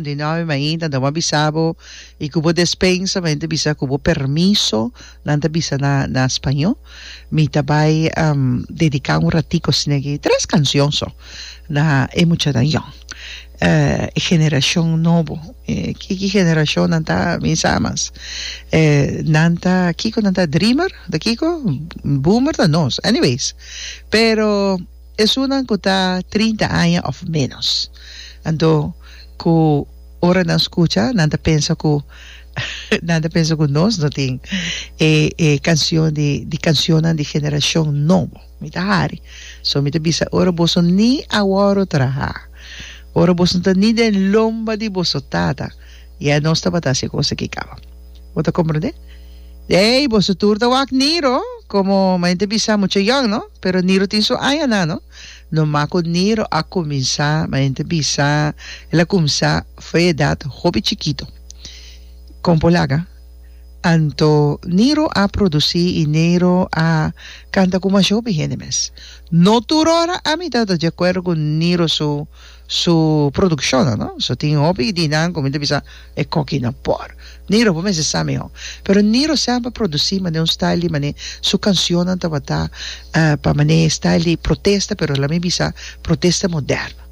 Di nou mainta nan bo a bisa bo y cu bo despensa mainta ta bisa cu bo permiso nan ta bisa na na spañó mi ta bay um dedica un ratico sina aki tres cancion so na e muchanan yòn eh e generacion nobo kiki generacion nan ta mi sa mas eh nan ta kico nan ta dreamer ta kico boomer ta nos anyways pero Esunnan ku ta trinta aña òf ménos. Anto ku ora nan skucha nan ta pensa ku nan ta pensa ku nos no tin e e kansion di di kansionnan di generashon nobo. Mi ta hari. So mi ta bisa ora boso ni a wòru trahá, ora boso no ta ni den lomba di boso tata, I a nos tabata hasi e kos aki kaba. Bo ta komprendé? Ey, boso tur ta wak Niro, komo manera ta bisa, mucha yòn, no? Pero Niro tin su añanan, no? Nòmá ku Niro a kuminsá, manera ta bisa, el a kumsa for e edat hopi chikitu. Kon por laga? Anto Niro a produsí i Niro a kanta ku masha hopi hende mes. No tur ora ami ta ta di akuerdo ku Niro su. su produccionnan no so tin hopi di nan cu mi ta bisa e coki no por Niro bo mester sa miho pero Niro semper produci manera un style di mane su cancionnan tabata pa mane style di protesta pero la mi bisa protesta moderno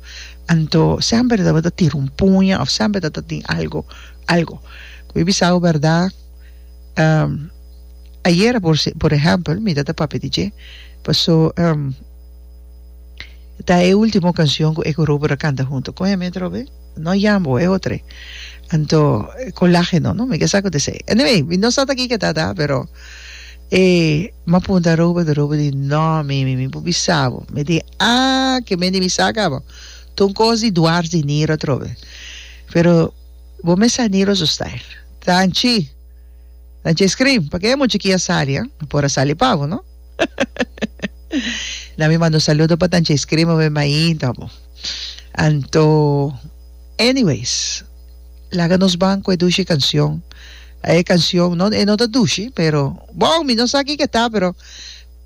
anto semper tabata tira un puña of semper ta ta tin algo algo cu mi bisabo berdad ayera por por ehempel mi ta ta papia di dje pasobra. Ta e ultimo cancion cu Ecorobo ta canta hunto con heme atrobe. No Yambo, e otro e. Anto, Colageno, no? Mi ke sa cu ta esey. Anyway, mi no sa ta kiko ta ta, pero e m'a punta Robo, ta Robo di, No, mimi, mi por bisa bo. Mi di, Ah, ke men di mi sa caba. Ta un cos di dwars di Niro atrobe. Pero bo mes sa Niro su style. Ta anchi. Ta anchi e scream. Pake e mucha ki a sali, a? Mi por a sali pa bo, no? Na mi manda un saludo pa tanchi escribe mi mainta bo. Anto anyways laga nos ban cu e dushi cancion. A e cancion no e no ta dushi pero bon mi no sa kico e ta pero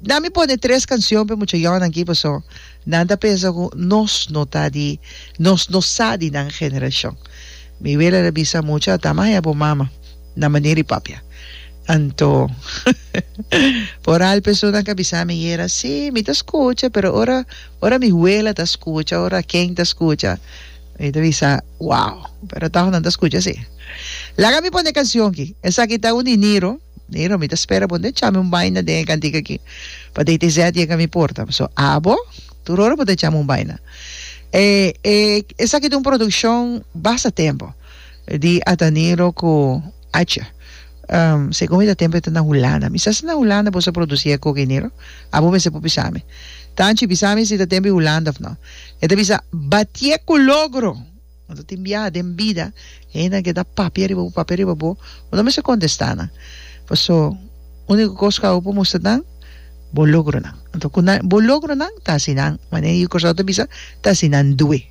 na mi pone tres cancion pe muchayonan aki paso nan ta pensa cu nos no ta di nos no sa di nan generacion. Mi wele a bisa mucha a tamaya bo mama. na manera di papia. Anto, foral personanan ka bisa mi yera, Sí, mi ta skucha, pero ora, ora mi huela ta skucha, ora Ken ta skucha, mi ta bisa, Wow! Pero tòg nan ta skucha sí. Laga mi pone e kansion ki. Esaki ta un di Niro. Niro, mi ta spera bo. N'ta chami un baina den e kantika ki. Pa dei TZ yega mi porta. So, abo? Tur ora bo ta chami un baina. E, e, esaki ta un produkshon basta tempu. di Adanero ku Acha. Segun mi ta tempu e ta na Hulanda. Mi sa si na Hulanda bo sa produsí e kokenero? Abo mester por bisa mi. Tanchi bisa mi si ta tempu Hulanda òf no. E ta bisa, Batié ku logro! Bo ta tin biaha den bida, hendenan ke ta papia riba bo, papia riba bo, bo no mester kontestá nan. Paso, úniko kos ku abo por mustra nan, bo logronan. Anto, ku nan bo logronan, ta asina, manera Yukoslau ta bisa, ta asina due.